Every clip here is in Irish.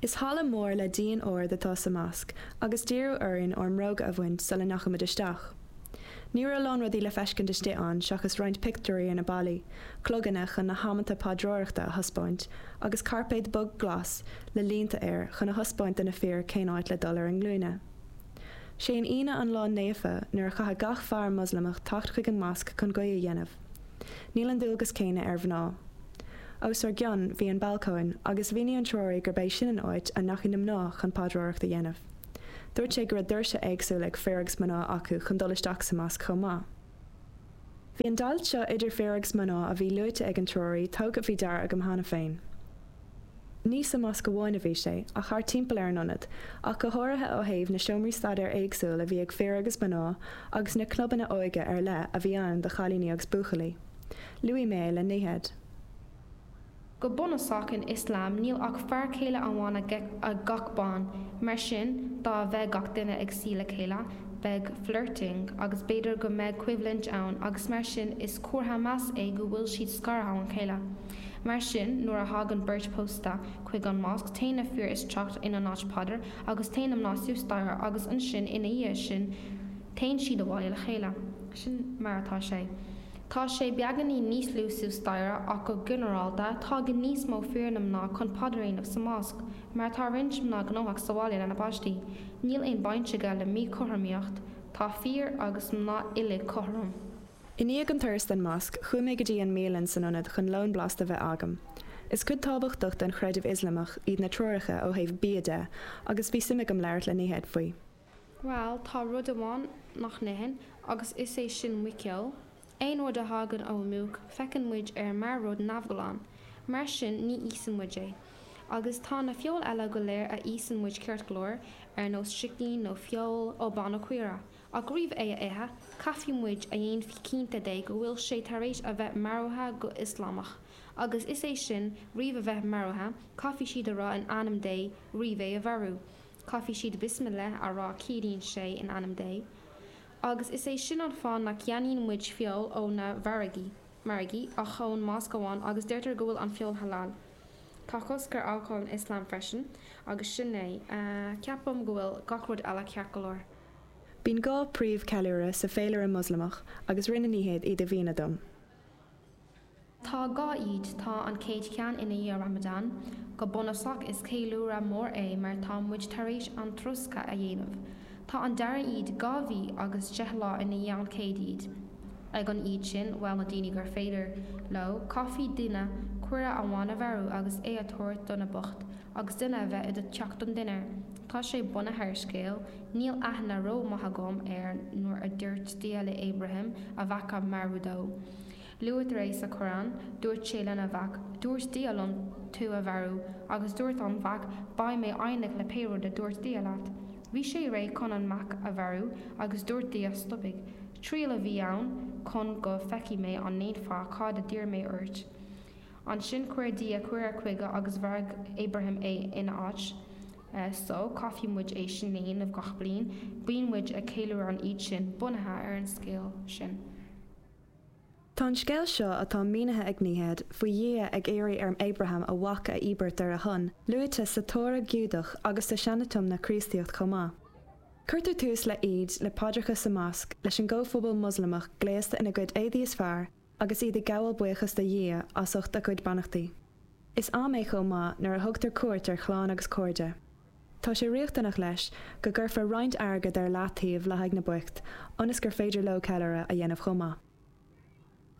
Is halla mór le díon ard atá sa Mosc agus d'iarradh orainn ár mbróga a bhaint sula ndeachamar isteach. Ní raibh a lán rudaí le feiscint istigh ann seachas roinnt pictiúirí ar na ballaí, cloganna chun na hamanta paidreoireachta a thaispeáint agus cairpéad bog glas le línte air chun a thaispeáint do na fir cén áit le dul ar a nglúine. Sé an Aoine an lá naofa nuair a chaithfidh gach fear Moslamach teacht chuig an Mosc chun guí a dhéanamh. Níl an dualgas céanna ar mhná. Os ar gcionn bhí an balcóin agus mhínigh an treoraí gurb é sin an áit a ndeachaigh na mná chun paidreoireacht a dhéanamh. Dúirt sé go raibh doirse éagsúla ag fir agus mná acu chun dul isteach sa mosc chomh maith. Bhí an deighilt seo idir fir agus mná a bhí luaite ag an treoraí tógtha faoi deara agam cheana féin. ní sa Mosc amháin a bhí sé, ach thart timpeall ar an ionad, ach go háirithe ó thaobh na seomraí staidéir éagsúla a bhí ag fir agus mná agus na clubanna óige ar leith a bhí ann do chailíní agus buachaillí. Luaigh mé é le Nihad. Go bunúsach in Ioslam níl ach fear céile amháin ag gach bean, mar sin dá mbeadh gach duine ag suí le chéile, bheadh flirting agus b'fhéidir go mbeadh coimhlint ann agus mar sin is comhartha measa é go bhfuil siad scartha óna chéile. Mar sin, nuair a thagann beirt pósta chuig an Mosc, téann na fir isteach ina n-áit paidir agus téann na mná suas staighre agus ansin ina dhiaidh sin téann siad abhaile le chéile. Sin mar atá sé. Tá sé beagainín níos lú suas staighre ach go ginearálta tagann níos mó fir ná mná chun paidir a dhéanamh sa Mosc mar tá roinnt mná gnóthach sa bhaile lena bpáistí. Níl aon baint aige le míchothromaíocht, tá fir agus mná uilig cothrom. I ndiaidh an turas den mosc, chuaigh mé go dtí an mbialann san ionad chun lón blasta a bheith agam. Is cuid tábhachtach den chreideamh Ioslamach iad na treoracha ó thaobh bia de agus bhí suim agam labhairt le Nihad faoi. Bhuel, tá rud amháin nach n-itheann agus is é sin muiceoil. Aon rud a thagann ó muc, féachann muid air mar rud neamhghlan. Mar sin, ní íosann muid é. Agus tá na feoil eile go léir a íosann muid ceart go leor, ar nós sicín nó feoil ó ba nó caora. Ach roimh é a ithe, caithfidh muid a dhéanamh cinnte de go bhfuil sé tar éis a bheith maraithe go Ioslamach, agus is é sin, roimh a bheith maraithe, caithfidh siad a rá in ainm Dé, roimh é a mharú, caithfidh siad bismillah a rá ciallaíonn sé in ainm Dé, agus is é sin an fáth nach gceannaíonn muid feoil ó na mhargaí, margaí, ach ón Mosc amháin, agus deirtear go bhfuil an feoil halal. Tá cosc ar alcól in Ioslam freisin, agus sin é, ceapaim, go bhfuil gach rud eile ceart go leor. Bíonn dhá príomh ceiliúradh sa féilire Moslamach agus rinne Nihad iad a mhíniú dom. Tá dhá Eid, tá an chéad cheann ina dhiaidh Ramadan, go bunusach is ceiliúradh mór é mar tá muid tar éis an troscadh a dhéanamh. Tá an dara Eid dhá mhí agus deich lá ina dhiaidh an chéad Eid. Ag an Eid sin, bhuel na daoine gur féidir leo, caithfidh duine caora amháin a mharú agus é a thabhairt do na boicht agus duine a bheith i do theach don dinnéar. Tá sé bunaithe ar scéal, níl aithne ró maith agam air, nuair a dúirt Dia le Abraham a mhac a mharú dó. Luaitear é sa Quran, dúirt sé lena mhac, dúirt Dia liom tú a mharú, agus dúirt an mhac, beidh mé foighneach le pé rud a dúirt Dia leat. Bhí sé réidh chun an mac a mharú agus dúirt Dia stopaidh. Triail a bhí ann chun go feicfidh mé an ndéanfá cad a d'iarr mé ort. Ansin chuir Dia caora chuige agus mharaigh Abrahám é ina áit. Só, caithfidh muid é sin a dhéanamh gach bliain, bíonn muid ag ceiliúradh an Eid sin bunaithe ar an scéal sin. Tá an scéal seo, atá mínithe ag Nihad, faoi Dhia ag iarraidh ar Abrahám a mhac a íobairt ar a shon, luaite sa Tóra Giúdach agus sa Sean-Tiomna Críostaíochta chomh maith. Cuirtear tús le Eid le paidreacha sa mhosc, leis an gcomhphobal Moslamach gléasta ina gcuid éadaí is fearr, agus iad ag gabháil buíochas do Dhia as ucht a gcuid beannachtaí. Is am é chomh maith nuair a thugtar cuairt ar chlann agus cairde. Tá sé riachtanach leis go gcuirfear roinnt airgid ar leathtaobh le haghaidh na boicht ionas gur féidir leo ceiliúradh a dhéanamh chomh maith.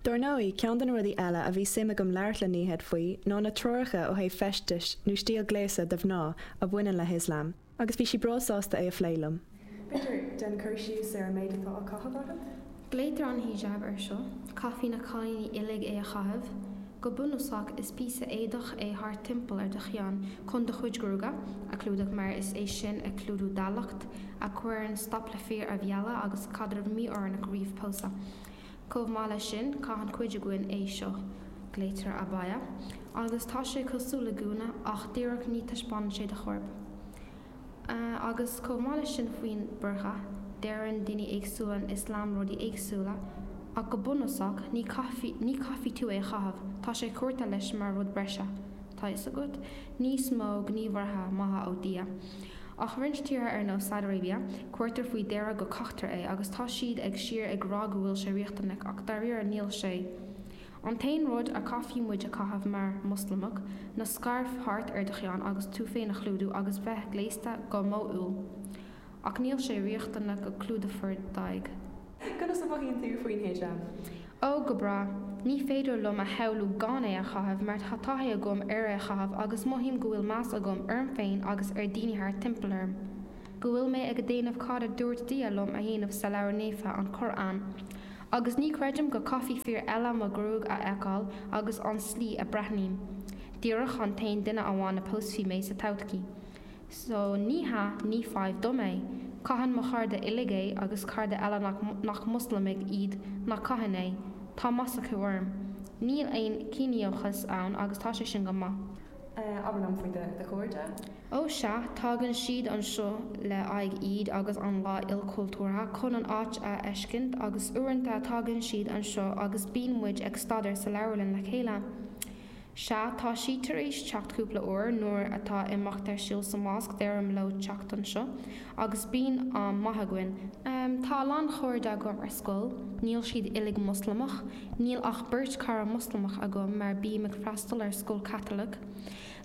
Dar ndóigh, ceann de na rudaí eile a bhí suim agam labhairt le Nihad faoi ná na treoracha ó thaobh feistis nó stíl gléasadh do mhná a bhaineann le hIoslam. agus bhí sí breá sásta é a phlé liom. An féidir leat déan cur síos ar an méid atá á caitheamh agat. Glaoitear an hijab ar seo. Caithfidh na cailíní uilig é a chaitheamh. Go bunúsach is píosa éadach é thart timpeall ar do cheann chun do chuid gruaige a chlúdach mar is é sin a chlúdú d'áilleacht, a chuireann stop le fir a mhealladh agus caidreamh mí-oiriúnach roimh pósadh. Chomh maith leis sin, caitheann cuid againn é seo, glaoitear abaya, agus tá sé cosúil le gúna ach díreach ní taispeánann sé do chorp. Agus chomh maith leis sin faoin burqa, deireann daoine éagsúla in Ioslam rudaí éagsúla ach go bunúsach ní chaithfidh, ní chaithfidh tú é a chaitheamh, tá sé curtha leis mar rud breise, tá a fhios agat, níos mó gníomhartha maithe ó Dhia. Ach roinnt tíortha ar nós Saudi Arabia, cuirtear faoi deara go gcaitear é agus tá siad ag síor ag rá go bhfuil sé riachtanach ach dairíre níl sé. An t-aon rud a chaithfidh muid a chaitheamh mar Mhoslamach ná scairf thart ar do cheann agus tú féin a chlúdú agus bheith gléasta go modhúil. Ach níl sé riachtanach go clúdófar d'aghaidh. Conas a mhothaíonn tú faoin hijab? Ó, go breá. Ní féidir liom a shamhlú gan é a chaitheamh mar tá taithí agam ar é a chaitheamh agus mothaím go bhfuil meas agam orm féin agus ar dhaoine thart timpeall orm, go bhfuil mé ag déanamh cad a dúirt Dia liom a dhéanamh sa leabhar naofa, an Qur'an. Agus ní chreidim go caithfidh fir eile mo ghruaig a fheiceáil agus an slí a breathnaím. Díreach an t-aon duine amháin a pósfaidh mé sa todhchaí. So, ní hea, ní fadhb dom é. Caitheann mo chairde uilig é agus cairde eile nach, nach Muslamaigh iad nach caitheann é. Tá meas acu orm. Níl aon ciníochas ann agus tá sé sin go maith. Eh, abair liom faoi do, do chairde? Ó sea, tagann siad anseo le aghaidh Eid agus an lá ilchultúrtha chun an áit a fheiscint agus uaireanta tagann siad anseo agus bíonn muid ag staidéar sa leabharlann le chéile. Sea, tá siad tar éis teacht cúpla uair nuair atá imeacht ar siúl sa Mhosc, deirim leo teacht anseo, agus bíonn am maith againn. Tá a lán chairde agam ar scoil, níl siad uilig Moslamach, níl ach beirt cara Moslamach agam mar bím ag freastal ar scoil Chaitliceach.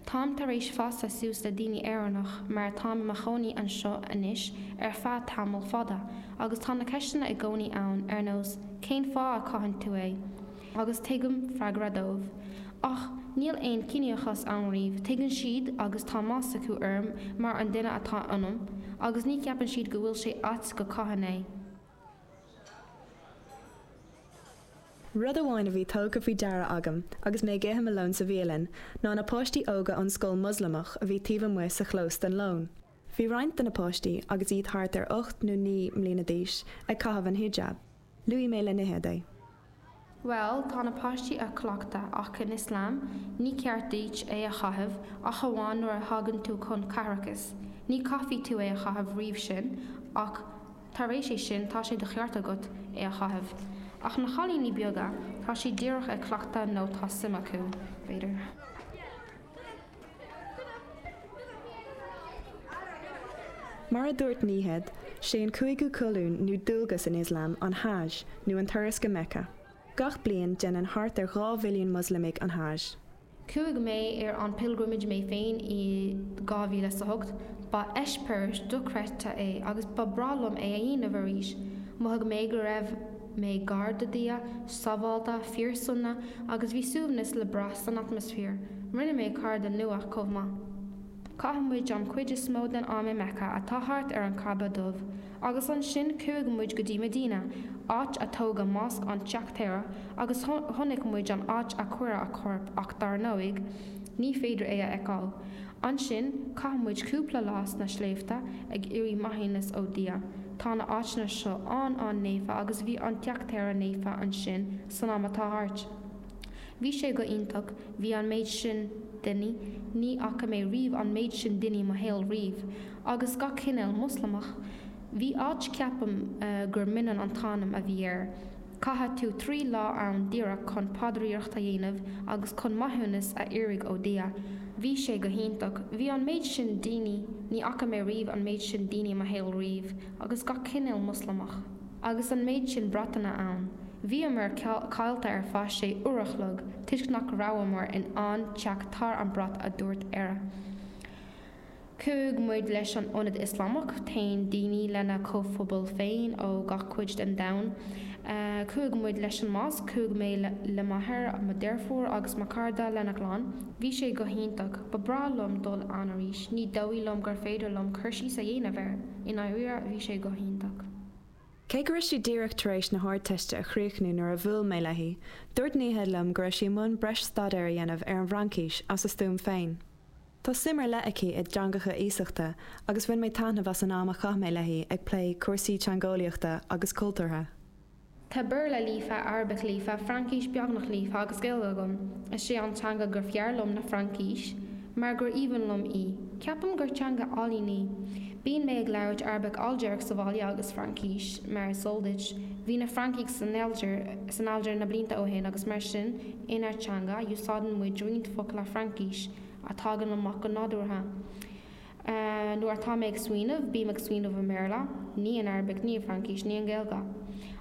Táim tar éis fás suas le daoine Éireannach mar táim i mo chónaí anseo anois ar feadh tamall fada agus tá na ceisteanna i gcónaí ann ar nós 'cén fáth a caitheann tú é? agus tugaim freagra dóibh. Ach níl aon ciníochas ann riamh, tuigeann siad agus tá meas acu orm mar an duine atá ionam, agus ní cheapann siad go bhfuil sé ait go caithim é. Rud amháin a bhí tugtha faoi deara agam agus mé ag ithe mo lón sa bhialann ná na páistí óga ón scoil Moslamach a bhí taobh amuigh sa chlós don lón. Bhí roinnt de na páistí, agus iad thart ar ocht nó naoi mbliana d'aois, ag caitheamh an hijab. Luaigh mé le Nihed é. Bhuel, tá na páistí a' cleachtadh, ach in Ioslam, ní ceart duit é a chaitheamh ach amháin nuair a thagann tú chun caithreachais. Ní chaithfidh tú é a chaitheamh roimh sin, ach tar éis é sin, tá sé de cheart agat é a chaitheamh. Ach na chailíní beaga, tá siad díreach a' cleachtadh nó tá suim acu, b'fhéidir. Mar a dúirt Nihed, sé an cúigiú colún nó dualgas in Ioslam an Hajj, nó an turas go Mecca. Gach bliain, déanann thart ar dhá mhilliún Moslamaigh an Hajj. Chuaigh mé ar an pilgrimage mé féin i 2008. Ba eispéireas dochreidte é agus ba bhreá liom é a dhéanamh arís. Mhothaigh mé go raibh. mé gar do Dhia, sábháilte, fíorsona agus bhí suaimhneas le brath san atmaisféar. Rinne mé cairde nua chomh maith. Chaith muid an chuid is mó den am i Mecca atá thart ar an Ka'bah dubh agus ansin chuaigh muid go dtí Medina, áit a tógadh Mosc an Teachtaire agus chonaic muid an áit a cuireadh a chorp ach dar ndóigh, Ní féidir é a fheiceáil. Ansin, chaith muid cúpla lá sna sléibhte ag iarraidh maithiúnas ó Dhia. Tá na áiteanna seo an-an-naofa agus bhí an teachtaire naofa ansin san am atá thart. Bhí sé go hiontach, bhí an méid sin daoine, ní fhaca mé riamh an méid sin daoine i mo shaol riamh, agus gach cinéal Moslamach. Bhí áit, ceapaim gur Minan an t-ainm a bhí air. Caithfidh tú trí lá ann díreach chun paidríocht a dhéanamh agus chun maithiúnas a iarraidh ó Dhia. Bhí sé go hiontach. Bhí an méid sin daoine, ní fhaca mé riamh an méid sin daoine i mo shaol riamh, agus gach cinéal Moslamach. Agus an méid sin bratanna ann. Bhíomar caillte ar feadh sé uair an chloig toisc nach rabhamar in ann teacht ar an brat, a dúirt Aira. Chuaigh muid leis an Ionad Ioslamach, téann daoine lena chomhphobal féin ó gach cuid den domhan. Chuaigh muid leis an Mosc, chuaigh mé le m'athair, mo dheirfiúr agus mo chara lena gclann. Bhí sé go hiontach. Ba bhreá liom dul ann arís. Ní dóigh liom gur féidir liom cur síos a dhéanamh air. I ndáiríre, bhí sé go hiontach. Cé go raibh sí díreach tar éis na hArdteiste a chríochnú nuair a bhuail mé léi, dúirt Nihad liom go raibh sí i mbun breis staidéir a dhéanamh ar an bhFraincís as a stuaim féin. Tá suim ar leith aici i dteangacha iasachta agus bhain mé taitneamh as an am a chaith mé léi ag plé cúrsaí teangeolaíochta agus cultúrtha. Tá Béarla líofa, Arabach líofa, Fraincis beagnach líofa agus Gaeilge agam. Is é an teanga is fearr liom ná Fraincis mar gur aoibhinn liom í. Ceapaim gur teanga álainn í. Bíonn mé ag labhairt Arabach Ailgéarach sa bhaile agus Fraincis, mar is eol duit, bhí na Francaigh san Aldir san Aldir na blianta ó shin agus mar sin, inár dteanga, úsáideann muid roinnt focla Fraincise. a thagann amach go nádúrtha. Nuair atá mé ag smaoineamh, bím ag smaoineamh i mBéarla, ní in Arabach, ní i bhFraincis, ní i nGaeilge.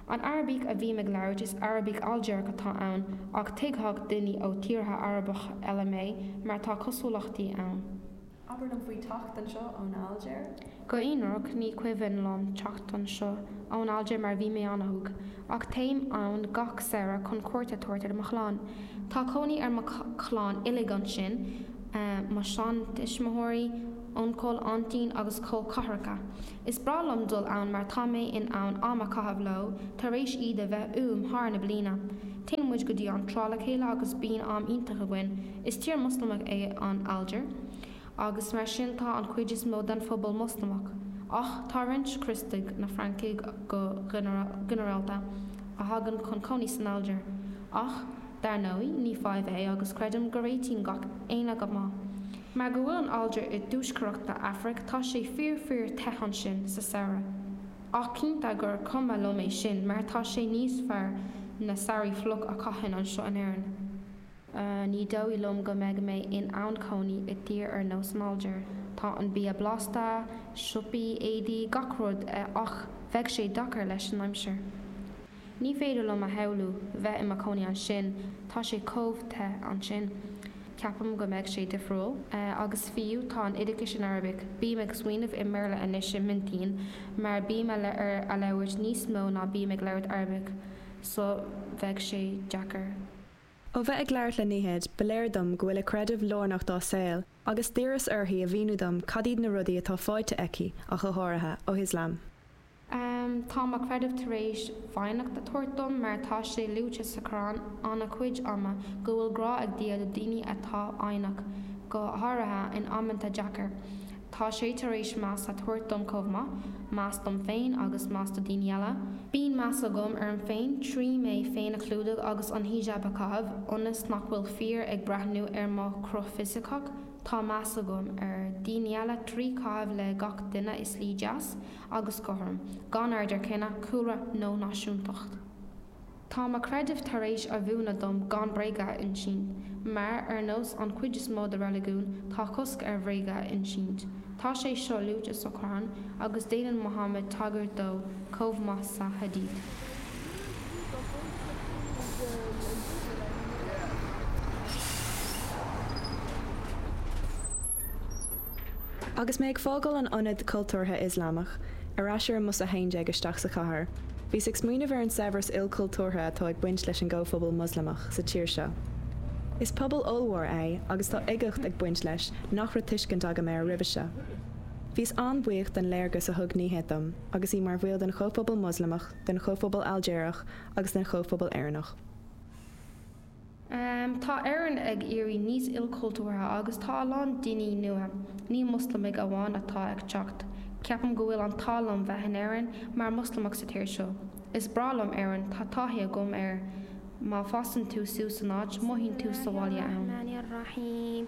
An Arabach a bhím ag labhairt is Arabach Ailgéarach atá ann ach tuigfeadh daoine ó thíortha Arabacha eile mé mar tá cosúlachtaí ann. Abair liom faoi teacht anseo ón Ailgéir. Go hionraic, ní cuimhin liom teacht anseo ón Aldir mar bhí mé an-óg, ach téim ann gach samhradh chun cuairt a thabhairt ar mo chlann. Tá cónaí ar mo chlann uilig ansin, mo sheantuismitheoirí, uncail, aintín agus col ceathracha. Is breá liom dul ann mar tá mé in ann am a chaitheamh leo tar éis iad a bheith uaim thar na bliana. Téann muid go dtí an trá le chéile agus bíonn am iontach againn. Is tír Mhoslamach é an Aldir. agus mar sin tá an chuid is mó den phobal Moslamach, ach tá roinnt Críostaí, na Francaigh go ginearálta, a thagann chun cónaí san Aldir. Ach, dar ndóigh, ní fadhb é agus creidim go réitíonn gach éinne go maith. Mar go bhfuil an Aldir i dtuaisceart na Afraic, tá sé fíor fíor te ansin sa samhradh. Ach cinnte gur cuma liom é sin mar tá sé níos fearr na samhraí fliuch a chaithfinn anseo in Éirinn. Ní dóigh liom go mbeidh mé in ann cónaí i dtír ar nós Algeria. Tá an bia blasta, siopaí, éadaí, gach rud, ach bheadh sé deacair leis an aimsir. Ní féidir liom a shamhlú bheith i mo chónaí ansin, tá sé chomh te ansin. Ceapaim go mbeidh sé difriúil. Agus fiú tá an oideachais in Arabic, bím ag smaoineamh i mBéarla anois i m'intinn mar bím á labhairt níos mó ná bím ag labhairt Arabic so bheadh sé deacair. Ó bheith ag labhairt le Nihad, ba léir dom go bhfuil a creideamh lárnach dá saol, agus d'iarras uirthi a mhíniú dom cad iad na rudaí atá fáighte aici, go háirithe, ó Islam. Tá mo chreideamh tar éis foighneacht a thabhairt dom, mar tá sé luaite sa Qur'an an-chuid ama go bhfuil grá ag Dia do daoine atá fhoighneach, go háirithe in amanta deacair. Tá sé tar éis meas a thabhairt dom chomh maith, meas dom féin agus meas do daoine eile. Bíonn meas agam orm féin trí mé féin a chlúdach agus an hijab a chaitheamh ionas nach bhfuil fir ag breathnú ar mo chruth fisiceach. Tá meas agam ar dhaoine eile trí chaitheamh le gach duine i slí deas agus cothrom, gan aird ar chine, cúlra nó náisiúntacht. Tá mo chreideamh tar éis a mhúineadh dom gan bréaga a insint, mar, ar nós an chuid is mó de reiligiúin, tá cosc ar bhréaga a insint. Tá sé seo luaite sa Quran, agus déanann Muhammad tagairt dó chomh maith sa Hadith. Agus mé ag fágáil an Ionad Cultúrtha Ioslamach ar ais ar an mbus 11 isteach sa chathair, bhíos ag smaoineamh ar an saibhreas ilchultúrtha atá ag baint leis an gcomhphobal Moslamach sa tír seo. Is pobal ollmhór é agus tá uigeacht ag baint leis nach raibh tuiscint agam air roimhe seo. Bhíos an-bhuíoch den léargas a thug Nihad dom agus í mar bhaill den chomhphobal Moslamach, den chomhphobal Ailgéireach agus den chomhphobal Éireannach. Tá Éirinn ag éirí níos ilchultúrtha agus tá a lán daoine nua, ní Moslamaigh amháin atá ag teacht. Ceapaim go bhfuil an t-ádh liom bheith in Éirinn mar Moslamach sa tír seo. Is breá liom Éirinn, tá taithí agam air. Má fásann tú suas san áit, mothaíonn tú sa bhaile ann.